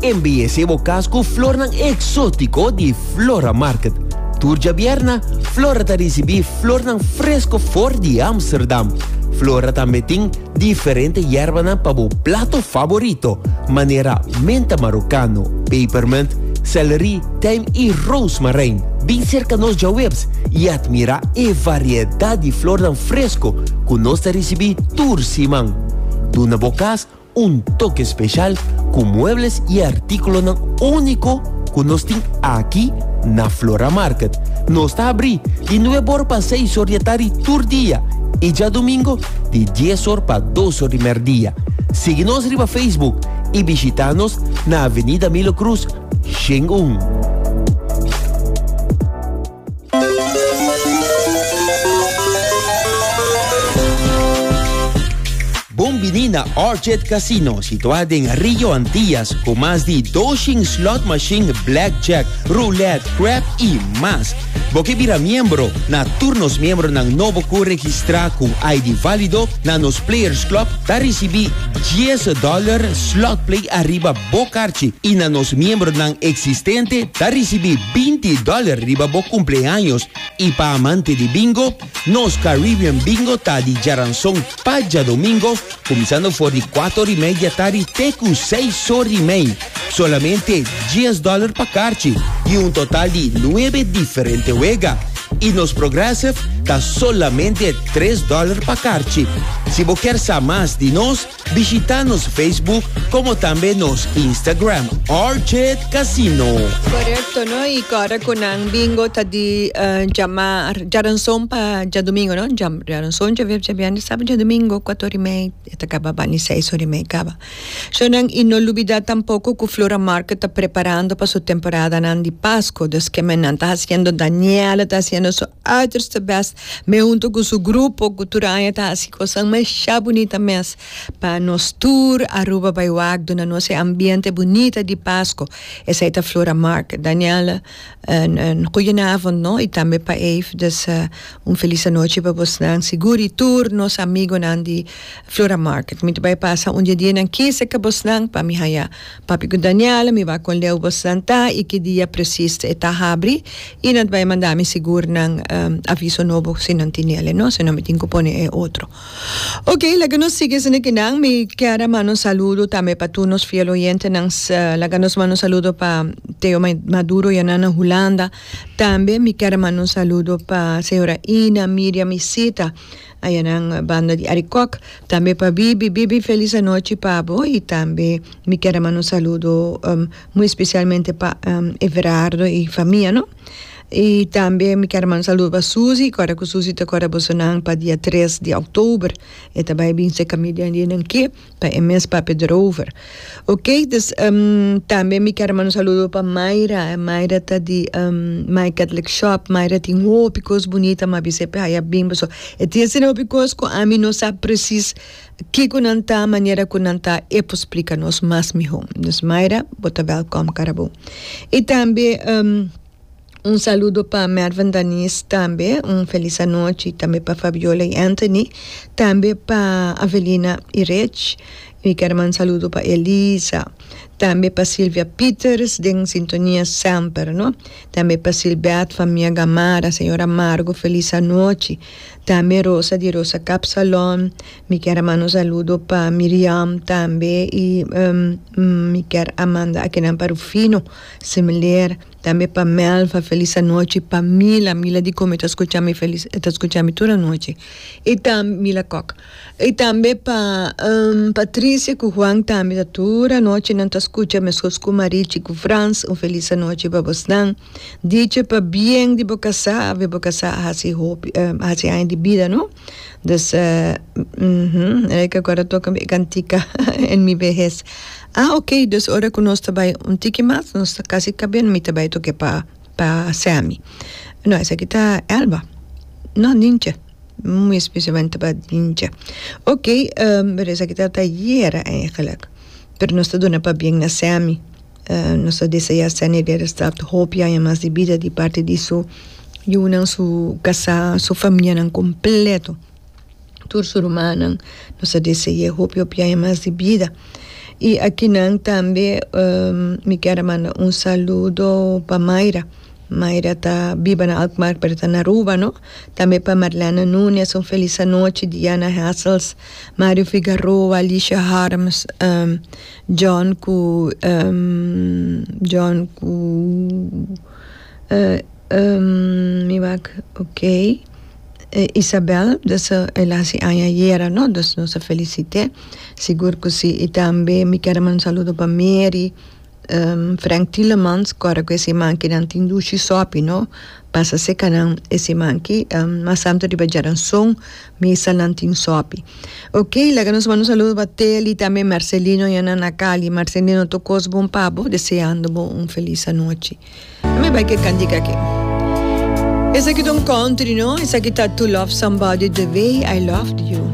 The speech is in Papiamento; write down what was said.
Embeyesé bo cas cu flornan exótico di Flora Market. Tur djabierna, Flora ta ricibi flornan fresco for di Amsterdam. Flora tambe tin diferente yerbanan pa bo plato favorito, manera menta marocano, pepermint, celery, tijm y rozemarijn. Bin cerca nos djawebs y admira e variedad di flornan fresco cu nos ta ricibi tur siman. Duna bo cas Un toke speshal ku muebles i artíkulonan úniko ku nos tin aki na Flora Market. Nos ta abrí di nuebe or pa seis or di e tardi tur dia i djadumingo di dies or pa dos or di mèrdia. Sigui nos riba Facebook i bishitá nos na Avenida Milo Cruz, Shen un. Bon bini na Orchid Casino, situá den Rio Antillas, ku mas di 200 slot machine, blackjack, roulette, crap i mas. Bo ke bira miembro na tur nos miembronan nobo ku registrá ku ID válido na nos Players Club ta risibí 10 dòler slot play ariba bo karchi i na nos miembronan eksistente ta risibí binti dòler riba bo kumpleaños i pa amante di bingo, nos Caribbean Bingo ta di djaranson pa djadomingo kuminsando for di kuator i media tari te ku seis sor i mei, solamente dies dòler pa karchi i un total di nuebe diferente wega i nos Progressive ta solamente tres dòler pa karchi. Si bo kier sa mas di nos. Bishita nos Facebook como tambe nos Instagram Orchid Casino. Correcto no y cora cu nan bingo ta di uh, llamar jaranson pa jadomingo no Jam, jaranson javier javiande sabe jadomingo cuatro hora y media eta caba bani seis hora y media caba so nan y no lubida tampoco cu Flora Market ta preparando pa su temporada nan di Pasco dus que men nan ta haciendo Daniela ta haciendo su Others the best me hunto cu su grupo cu tur aña ta haci cosan masha bunita mes pa nos tur Aruba bay wak duna nos e ambiente bunita di Pasco esay ta Flora Market Danielle un un goedenavond no y tambe pa Ave dus un feliz anochi pa bosnan sigur y tur nos amigonan di Flora Market mi ta bay pasa un di e dianan kisa ca bosnan pa mi haya Papi ku Daniel, mi bai kon leu bo santá i ki dia presis e ta habri, i nan ta bai mandá mi sigur nan aviso nobo si nan tin ele no, sino mi tin ku pone e otro. Ok, laga nos sigui esei kinan, mi kier a manda un saludo tambe pa tur nos fiel oyentenan, laga nos manda un saludo pa Theo Maduro i anan na Hulanda, tambe mi kier a manda un saludo pa señora Ina, Miriam i Sita. Ayanan banda di Arikok tambe pa bibi bibi felis anochi pa bo y tambe mi kier a manda un saludo muy especialmente pa Everardo y famia no y tambe mi kier a manda un saludo pa Susi y ora cu Susi ta cora bosonan pa dia tres di october e ta bay binse cami den di nan ke. Pa e mes papia derover. Ok dus em tambe mi kier manda un saludo pa Mayra Mayra ta di em my catholic shop Mayra tin hopi cos bunita mi a bisa e p'e haya bimbo so e tin asina hopi cos cu ami no sa precies kico nan ta manera cu nan ta e por splica nos mas miho dus Mayra bo ta welcom cara bo y tambe em. Un saludo pa Mervin Daniz tambe un felis anochi tambe pa Fabiola y Anthony tambe pa Avelina y Rich y ker manda saludo pa Elisa tambe pa Silvia Peters den sintonia semper no tambe pa Silbert famia Gamarra señor Amargo felis anochi tambe Rosa di Rosa Kapsalon mi ker a manda un saludo pa Miriam tambe y mi ker a manda akinan pa Rufino similer. Tambe pa Mel fa felis anochi pa Mila Mila di come ta scucha mi felis e ta scucha mi tur anochi y tambe Mila Kok y tambe pa Patricia cu Juan tambe ta tur anochi nan ta scucha mescos cu Marichi cu Frans un felis anochi pa bosnan dicha pa bien di bo casa awe bo casa a haci hopi a haci aña di bida no. Dus eh e kiko a toka mi e kantika en mi behes. Ah ok, dus ora ku nos ta bai un tiki mas nos ta kasi kaminda mi ta bai toke pa pa Semi. No esaki ta Elba. No Ninche. Mismisimente pa Ninche. Ok esaki ta ayera eigenlijk. Pero nos ta duna pabien na Semi. Nos ta deseá Sene Geidersdorp hopi aña mas di bida di parti di su yunan, su kasá, su famianan kompleto, tur su rumannan. Nos ta dese'é hopi hopi aña mas di bida. I akinan tambe mi ker a manda un saludo pa Mayra. Mayra ta biba na Alkmaar pero ta na Aruba, no. Tambe pa Marlene Nunes un felis anochi, Diana Hessels, Mario Figaroa, Alicia Harms. John ku John ku mi wak ok Isabel dus el a hasi aña ayera no dus nos a felisite sigur ku si y tambe mi ker a manda un saludo pa Mary Frank Tilemans ku ora ku ese mankinan tin dushi sopi no Pasa sekanan e siman aki mas santo riba Jaranson misanan tin sòpi. Ok laga nos manda un saludo pa Teli tambe Marcelino yanan na Cali Marcelino tur kos bon pa bo deseando bo un felis anochi. Mi bai ke kantika aki. Esaki ta un country no esaki ta To love somebody the way I loved you.